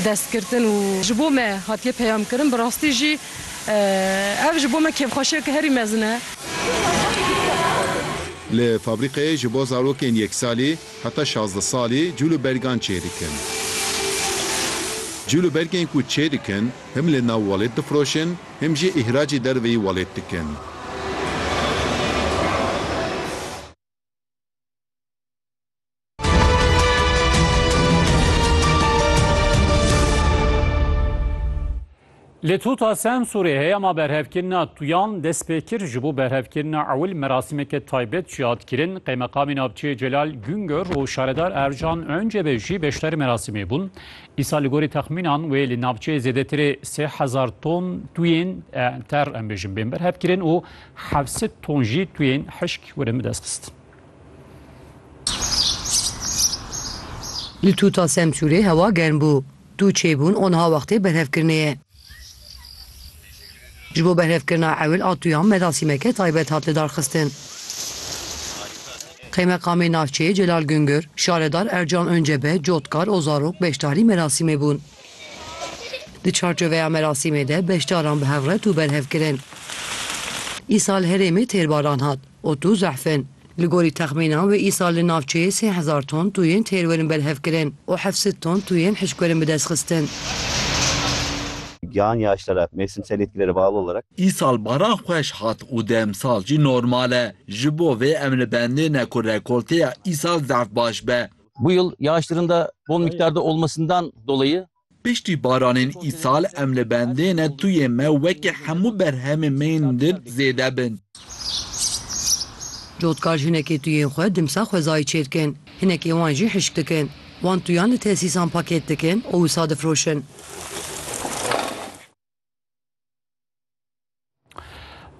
destgirtin û ji bo me hatiye peyamkirin, bi rastî jî ev ji bo me kêfxweşiyeke herî mezin e. Li fabrîkeyê ji bo zarokên yek salî heta şazdeh salî cûl û bergan çê dikin. Cûl û bergên ku çê dikin him li nav welêt difiroşin him jî îhracî derveyî welêt dikin. Li Tuta Semsûrê heyama berhevkirina tuyan dest pê kir ji bo berhevkirina ewil merasîmeke taybet jî hat kirin. Qeymeqamê navçeyê Celal Güngör û şaredar Ercan Öncebe jî beşdarî merasîmê bûn. Îsal li gorî texmînan wê li navçeyê zêdetirê sê hezar ton tuyên ter em bêjin bên berhevkirin û hevsed ton jî tuyên hişk werin bi destxistin. Li Tuta Semsûrê hewa germ bû. Du çêbûn onha wextê berhevkirinê ye. Ji bo berhevkirina ewil a tuyan merasîmeke taybet hat lidarxistin. Qeymeqamê navçeyê Celal Gungor, şaredar Ercan Oncebe, cotkar û zarok beşdarî merasîmê bûn. Di çarçoveya merasîmê de beşdaran bi hevret û berhev kirin. Îsal herêmê têrbaran hat. û tu zehf in. Li gorî texmînan wê îsal li navçeyê sê hezar ton tuyên têr werin berhevkirin û heft sed ton tuyên hişk werin bidestxistin. Giyan Yaşdarak, mevsimsel etkilere bağlı olarak. Îsal baran xweş hat û demsal jî normal e. Ji bo vê em li bendê ne ku rekolteya îsal zehf baş be. Bu yıl yağışların da bol miktarda olmasından dolayı Piştî baranên îsal em li bendê ne tuyê me wekî hemû berhemên me yên din zêde bin. Cotkar jinekê tuyên xwe dimsa xwezayê çêdikin, hinekê wan jî hişk dikin. Wan tuyan li tesîsan pakêt dikin û wisa difiroşin.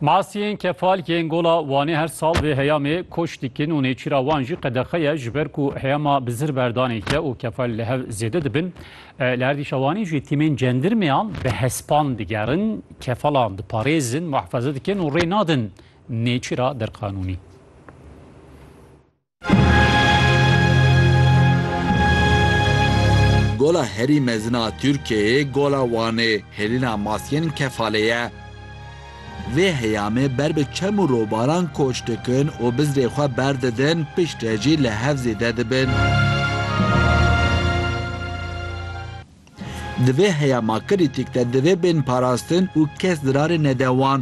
Masiyên kefal yên gola Wanê her sal vê heyamê koç dikin û nêçîra wan jî qedexe ye ji ber ku heyama bi zir berdanê ke û kefal li hev zêde dibin. Li erdîşa Wanê jî tîmên cendirmeyan bi hespan digerin, kefalan diparêzin, muhefeze dikin û rê nadin nêçîra derqanûnî. Gola herî mezin a Tirkiyeyê Gola Wanê, hêlîna maskên kefalê ye. Vê heyamê ber bi çem û robaran koç dikin û bizrê xwe berdidin, piştre jî li hev zêde dibin. Di vê heya ma krîtîk de divê bên parastin û kes zirarê nede wan.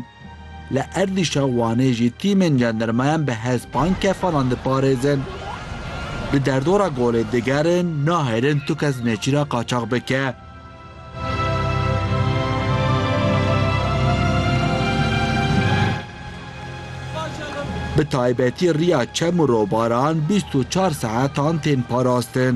Li erdîşa Wanê jî tîmên jandarmayan bi hespan kefanan diparêzin. Di derdora golê digerin nahêlin tu kes nêçîra qaçax bike. Bi taybetî riya çem û robaran bîst û çar saetan tên parastin.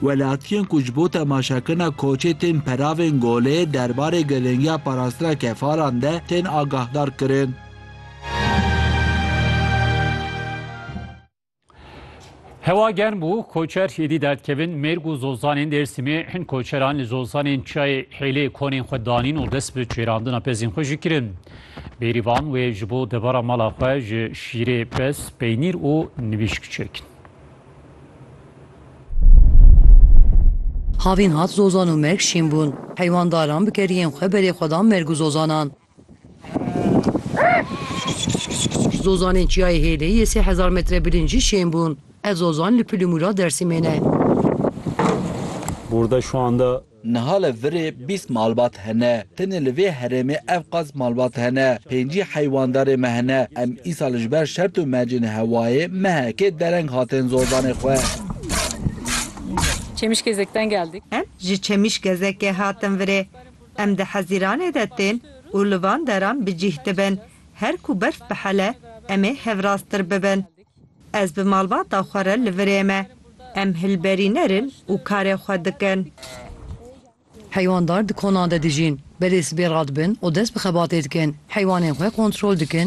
Welatiyên ku ji bo temaşakirina koçê tên peravên golê derbarê girîngiya parastina kefalan de tên agahdar kirin. Hewa germ bû, koçer êdî derdkevin. Mêrg û zozanên Dêrsimê hin koçeran li zozanên Çiyayê Hêlê konên xwe danîn û dest bi çêrandina pezên xwe jî kirin. Bêrîvan wê ji bo devera mala xwe ji şîrê pez, peynîr û nivîşk çêkin. Havîn hat zozan û merg şîn bûn. Heywandaran bi keriyên xwe berê xwe dan merg û zozanan. Zozanên Çiyayê Hêlê yê sê hezar metre bilînd jî şên bûn. Ev zozan li Pil û Mûra Dêrsimê ne. Niha li virê bîst malbat hene. Tenê li vê herêmê ev qas malbat hene. Pêncî heywandarê me hene. Em îsal ji ber şert û mercên hewayê mehekê dereng hatin zordanê xwe. Çemişgezek'ten geldik. Em ji Çemişgezekê hatin virê. Em di Hezîranê de tên û li van deran bi cîh dibin. Her ku berf bihele em ê hevrastir bibin. Ez bi malbata xwe re li virê me. Em hilberîner in û karê xwe dikin. Heywandar di konan de dijîn. Belê sibê radibin û dest bi xebatê dikin. Heywanên xwe kontrol dikin.